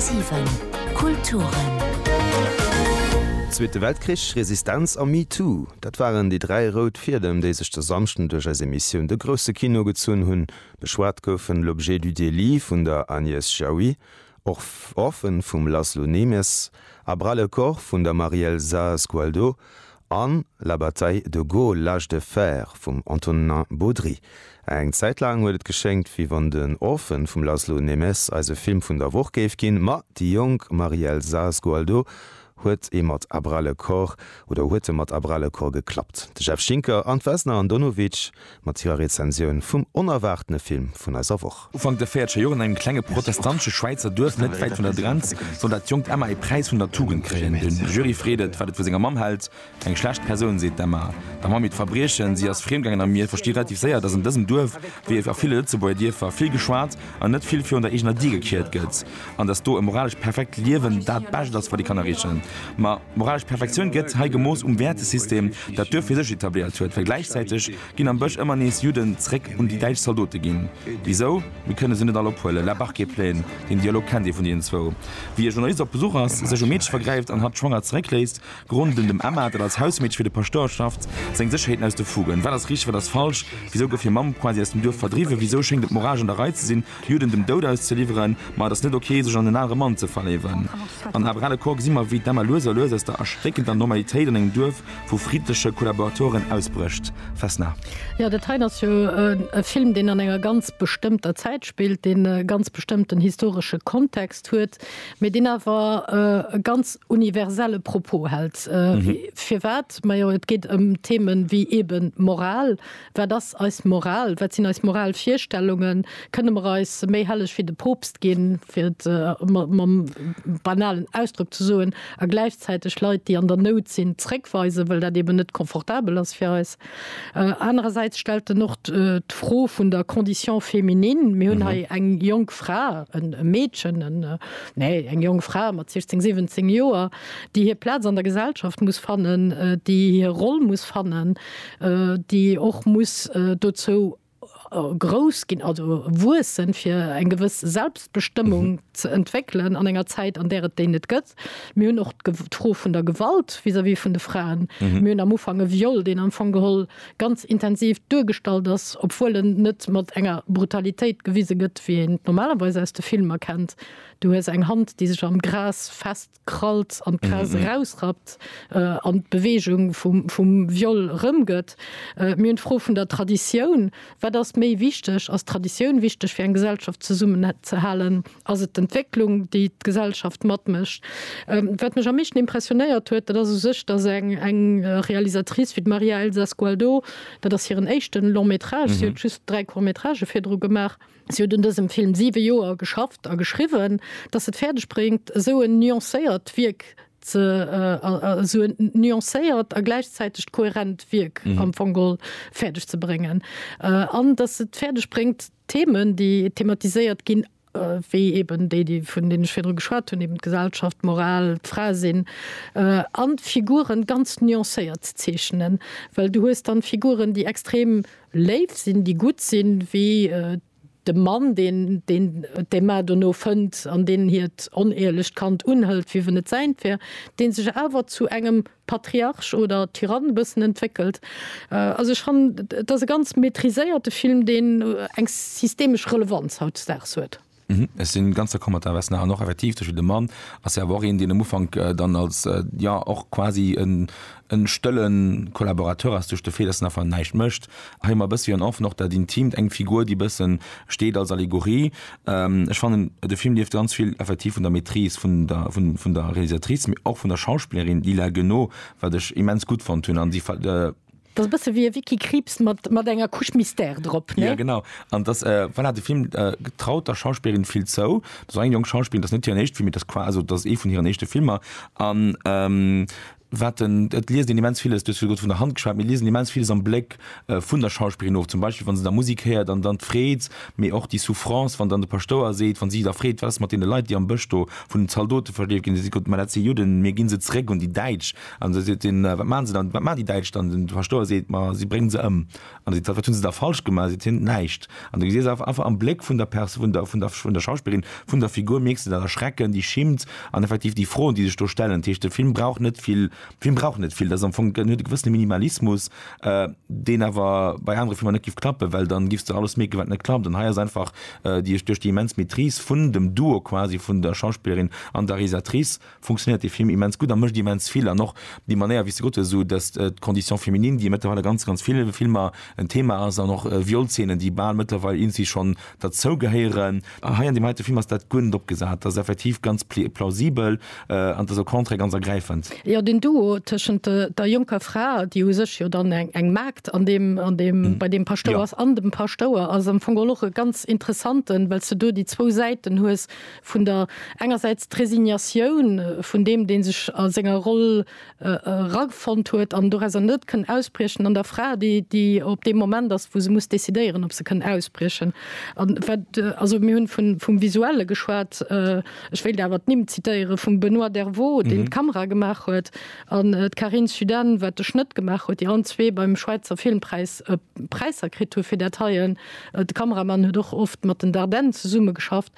10,7 Kulturen. Zweete Weltkrich, Resistenz a MeToo, dat waren déi dräi rout Fiedem, déi sech de Samschden duerch eis Emissioun De grousse Kino gezunn hunn. Beschwat goufen L'objet du délit vun der Agnès Jaoui, Orphan vum Laszlo Nemes a Bras le corps vun der Marielza Sgualdo an La bataille de Gaulle, l'âge de fer vum Antonin Baudry. Eng Zäit laang huet et geschéngt, wéi wann den Orphan vum Laszlo Nemes eise Film vun der Woch géif ginn, ma déi jonk Marie-Elsa Sgualdo huet e mat à bras le corps oder huet e mat à bras le corps geklappt. De Jeff Schinker an d'Vesna Andonovic Mat hirer Rezensioun vum onerwaartene Film vun eiser Woch. Ufank der véiertscher Joer an engem klenge protestantesche Schwäizer Duerf net wäit vun der Grenz soll dat jonkt Emma ee Präis vun der Tugend kréien. De Jury freet et, wat et vu senger Mamm hält. Eng schlecht Persoun, seet d'Emma. Der Mamm hiert Verbriechen, si ass friem gaangen a mir versti relativ séier, datt an dësem Duerf, wéi a ville Lëtzebuerger Dierfer, vill geschwat an net vill virun der eegener Dier gekiert gëtt. An dass do e moralescht perfekt Liewen dat Bescht ass, wat ee kann erreechen. Ma moralesch Perfektioun gëtt hei gemooss um Wäertesystem, dat d'Duerf fir sech etabléiert huet. Well gläichzäiteg ginn am Bësch ëmmer nees Judden zréck un déi däitsch Zaldote ginn. Wisou? Mir kënne se net all ophuelen. La Barquet-Plaine, deen Dialog kennt ee vun deenen zwou. Wéi e Journalist op Besuch ass, sech um Meedche vergräift an hatt schwanger zeréckléisst, Grund un dem Emma, dat als Hausmeedche fir de Paschtouer schafft, seng Sécherheeten aus de Fugen. Wat ass richteg, wat ass falsch? Wisou gouf hir Mamm quasi aus dem Duerf verdriwwen? Wisou schéngt et moralesch an der Rei ze sinn, Juden dem Doud auszeliwweren, ma et ass net ok, sech an en anere Mann ze verléiwen. An Abre le coeur gesi mer, wéi d'Emma lues a lues aus der erschréckender Normalitéit an engem Duerf vu friddleche Kollaboratoren ausbrécht. Vesna. Jo, dat hei ass jo e Film, deen an enger ganz bestëmmter Zäit spillt, deen e ganz bestëmmten historesche Kontext huet, mee deen awer e ganz universelle Propos hält. Firwat? Majo, et geet ëm Themen wéi eeben Moral, Wat ass eis Moral? Wat sinn eis moral Virstellungen? Kënne mer eis méi helleg wéi de Poopst ginn, fir et mam banalen Ausdrock ze soen, a gläichzäiteg Leit, déi an der Nout sinn, zréckweisen, well dat eben net confortabel ass fir eis? Anerersäits stellt en och d'Fro vun der Condition féminine. Mir hunn hei eng jonk Fra, e Meedchen, nee, eng jonk Fra mat 16, 17 Joer, déi hir Plaz an der Gesellschaft muss fannen, déi hir Roll muss fannen. déi och muss dozou grouss ginn, also wuessen, fir eng gewëss Selbstbestëmmung ze entwéckelen an enger Zäit, an där et déi net gëtt. Mir hunn och d'Fro vun der Gewalt vis-à-vis vun de Fraen. Mir hunn am Ufank e Viol, deen am Fong geholl ganz intensiv duergestallt ass, obwuel en net mat enger Brutalitéit gewise gëtt, wéi een et normalerweis aus de Filmer kennt, Du hues eng Hand, déi sech am Gras fest. krallt an d'Gras erausrappt an d'Beweegung vum Viol erëmgëtt. Mir hunn d'Fro vun der Traditioun. Wat ass méi wichteg? Ass d'Traditioun wichteg fir eng Gesellschaft zesummenzehalen? Ass et d'Entwécklung, déi d'Gesellschaft matmécht? Wat mech am meeschten impressionéiert huet, dat ass u sech, datt eng Realisatrice wéi d'Maria Elsa Sgualdo, dat ass hiren éischte Long-métrage, si huet just dräi Court-métragë virdru gemaach, Si huet un dësem Film siwe Joer geschafft a geschriwwen, datt se et fäerdeg bréngt, esou en nuancéiert Wierk ze, esou en nuancéiert a gläichzäiteg kohärent Wierk am Fong geholl fäerdeg ze bréngen. An datt se et fäerdeg bréngt, d'Themen, déi thematiséiert ginn, wéi eben déi, déi vun deenen ech virdru geschwat hunn, eben d'Gesellschaft, d'Moral, d'Fra sinn, an d'Figuren ganz nuancéiert ze zeechnen, well du hues dann Figuren, déi extrem Léif sinn, déi gutt sinn, wéi de Mann, deen d'Emma dono fënnt an deen hiert onehrlecht Kand unhëlt, wéi wenn et säint wär, deen sech awer zu engem Patriarch oder Tyrann e bëssen entwéckelt. Also ech fannen, et ass e ganz maîtriséierte Film, deen eng systemesch Relevanz hautdesdaags huet. Ech sinn ganz d'accord mat der Vesna an och effektiv duerch de Mann ass hie awer och een, deen am Ufank dann als ja och quasi en e stëlle Kollaborateur ass duerch de Fait, dass en einfach näischt mécht. Hei hu mer e bëssi en Enfant, och dat Intimt, eng Figur, déi e bësse steet als Allegorie. Ech fannen, de Film lieft ganz vill effektiv vun der Maîtrise vun der vun der Realisatrice, mee och vun der Schauspillerin Lila Guenot, wat ech immens gutt fonnt hunn an déi Dat ass e bësse wéi e Wiki-Kriibs mat, mat enger Couche Mystère drop, ne? Jo, genau. An et ass, voilà, de Film traut der Schauspillerin vill zou. Dat ass eng jonk Schauspillerin, dat ass net hiren éischte Film, mee dat ass qua, also dat ass ee vun hiren éischte Filmer. An wat en, et liest een immens villes, du hues virdu grad vun der Hand geschwat, mir liesen immens villes am Bléck vun der Schauspillerin of, zum Beispill wann se da Musek héiert an dann d'Freed, mee och déi Souffrance, wann dann de Paschtouer seet, wann si da freet, wat ass mat deene Leit, déi am Bësch do vun den Zaldote verleeft ginn, da seet Gott, mä dat si Judden, mir gi se zeréck un déi Däitsch, An da seet hien, Wat maachen se dann, wat maachen déi Däitsch dann? An de Paschtouer seet, Ma si bréngen se ëm. An da seet d'Saf, Wat hunn se da falsch gemaach? Seet hien, Näischt. An da gesiess awer einfach am Bléck vun der Pers, vun der, vun der, vun der Schauspillerin, vun der Figur, mierks de dat Erschrecken, déi Schimmt an effektiv déi Froen, déi sech do stellen. Dat heescht, de Film brauch net vill, de Film brauch net vill. Dat ass am Fong, huet e gewëssene Minimalismus, deen awer bei anere Filmer net géif klappen, well dann giffs de alles mierken, wat net klappt. An hei ass einfach déi, duerch déi immens Maîtrise vun dem Duo quasi vun der Schauspillerin an der Realisatrice, funktionéiert dee Film immens gutt a mécht immens vill. An och déi Manéier, wéi s de gesot hues, esou dass d'Condition féminine, déi mëttlerweil a ganz, ganz ville Filmer en Thema ass, an och Violszeenen, déi bal mëttlerweil irgendwie schonn derzou gehéieren, hei an deem heite Film ass dat guer net opgesat, dat ass effektiv ganz plausibel an et ass au contraire ganz ergräifend. Jo, deen Duo tëschent der jonker Fra, déi u sech jo dann eng Maagd an deem, an deem, bei deem Paschtouer ass, an dem Paschtouer ass am Fong och e ganz interessanten, well s de do déi zwou Säiten hues, vun der engersäits d'Resignatioun vun deem, dee sech a senger Roll erafonnt huet an dorauser net kënn ausbriechen, an der Fra, déi, déi op deem Moment ass, wou se muss decidéieren, ob se kënn ausbriechen. An wat, also mir hunn vun, vum Visuelle geschwat, ech wéilt awer d'Nimm zitéiere vum Benoît Dervaux, deen d'Kamera gemaach huet, an d'Carine Suden, wat de Schnëtt gemaach huet, déi allen zwee beim Schwäizer Filmpräis Präisser kritt hu fir dat heien. De Kameramann huet och oft mat den Dardenne zesummegeschafft.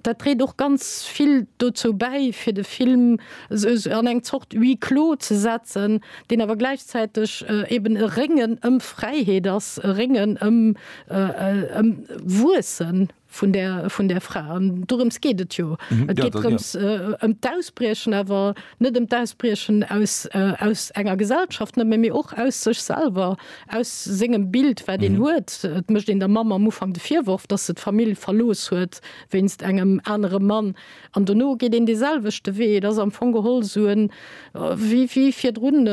Dat dréit och ganz vill dozou bäi, fir de Film esou an eng Zort Huis clos ze setzen, deen awer gläichzäiteg eben e Réngen ëm Fräiheet ass, e Réngen ëm Wuesse vun där Fra. An dorëms geet et jo. Et geet drëms ëm d'Ausbriechen, awer net ëm d'Ausbriechen aus enger Gesellschaft nëmme, mee och aus sech selwer, Aus sengem Bild, wat een huet, et mécht een der Mamm am Ufank de Virworf, dass se d'Famill verlooss huet wéinst engem anere Mann. An dono geet een dee selwechte Wee. Et ass am Fong geholl esou en, wéi virdrun,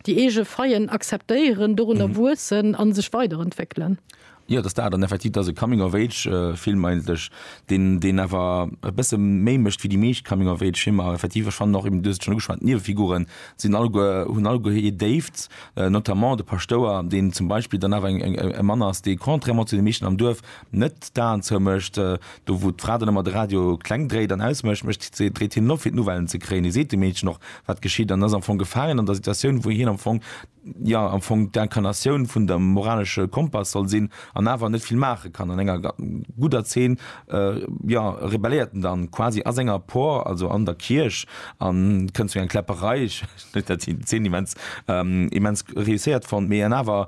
déi eege Faillen akzeptéieren, dorunner wuessen a sech weiderentwéckelen. Jo, dass dat an effektiv, dass e Coming of Age Film eigentlech, deen deen awer e bësse méi mécht wéi déi meescht Coming of Age Filmer. Effektiv, ech fannen och eben, du hues et schonn ugeschwat, d'Niewefiguren sinn alleguer, hunn alleguer hir Déifts, notamment de Paschtouer, deen zum Beispill dann awer eng e Mann ass, dee contrairement zu de meeschten am Duerf net d'Aen zoumécht. Do wou d'Fra dann ëmmer de Radio kleng dréit an ausmécht, mécht si, dréit hien en op fir d'Nouvellen ze kréien. Hie seet dem Meedchen och wat geschitt an ass am Fong gefaangen an der Situatioun, wou hien am Fong jo am Fong d'Incarnatioun vun der moralesche Kompass soll sinn, an awer net vill maache kann. An enger gudder Zeen, jo, rebelléiert en dann quasi a senger Por, also an der Kierch, an et kënnt zu enger Kläpperei. Ech huet dat déi Zeen immens, immens réusséiert fonnt, mee an awer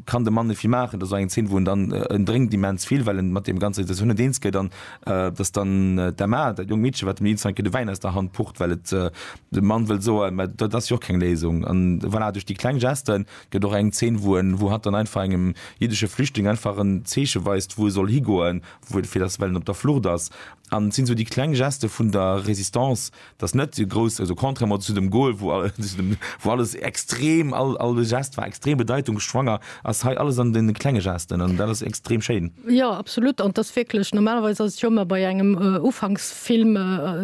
kann de Mann net vill maachen. Dat ass och eng Zeen, wou en dann, en drénkt immens vill, well en mat deem ganzer Situatioun net eens gëtt, an datt dann d'Emma, dat jonkt Meedche, wat dem Nils Reinke de Wäin aus der Hand pucht, well et De Mann wëllt soen, mä dat ass jo och keng Léisung. An voilà, duerch déi kleng Geste gëtt och eng Zeen, wou en, wou hatt dann einfach engem jiddesche Flüchtling einfach en Zeeche weist, wou e soll higoen, wou et, fir dass, well en op der Flucht ass. An et sinn esou déi kleng Geste vun der Résistance, dass net déi grouss, also contrairement zu dem Gol, wou, zu dem, wou alles extrem, all, all de Geste war extrem bedeitungsschwanger, ass hei alles an den klenge Gesten an dat ass extrem schéin. Jo absolut an et ass wierklech, normalerweis ass et jo ëmmer bei engem Ufanksfilm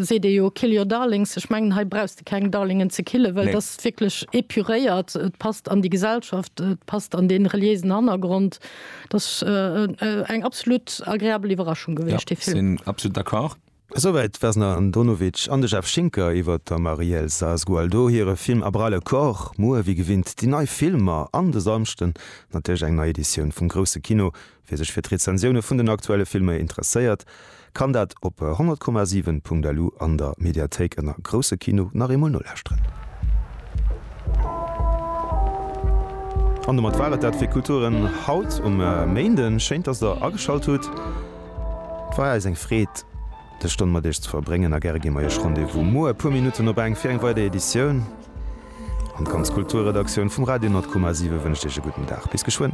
seet ee jo kill your darlings, ech mengen hei brauchs de keng Darlingen ze killen, well et ass wierklech epuréiert, et passt an déi Gesellschaft, et passt an dee reliéisen Hannergrond. Et ass eng absolut agreabel Iwwerraschung gewiescht dee Film. Jo, sinn absolut d'accord. Esouwäit d'Vesna Andonovic an de Jeff Schinker iwwer der Marielle Saaz-Gualdo hire Film A bras le corps. Muer wéi gewinnt déi nei Filmer an de Samschden natierlech eng nei Editioun vum Grousse Kino. Wie sech fir d'Rezensioune vun den aktuelle Filmer interesséiert, kann dat op 100,7.lu an der Mediathéik ënner Grousse Kino nach eemol nolauschteren. An domat war et dat fir Kulturen haut um Méinden. Schéin, dass der ageschalt hutt. Et war eis eng Freed, dës Stonn mat Iech ze verbréngen a gäre gi mer Iech Rendez-vous muer e puer Minutten op eng fir eng weider Editioun. An d'ganz Kulturredaktioun vum Radio Nord-Kummer 7 wënscht Iech e gudden Dag. Bis geschwënn.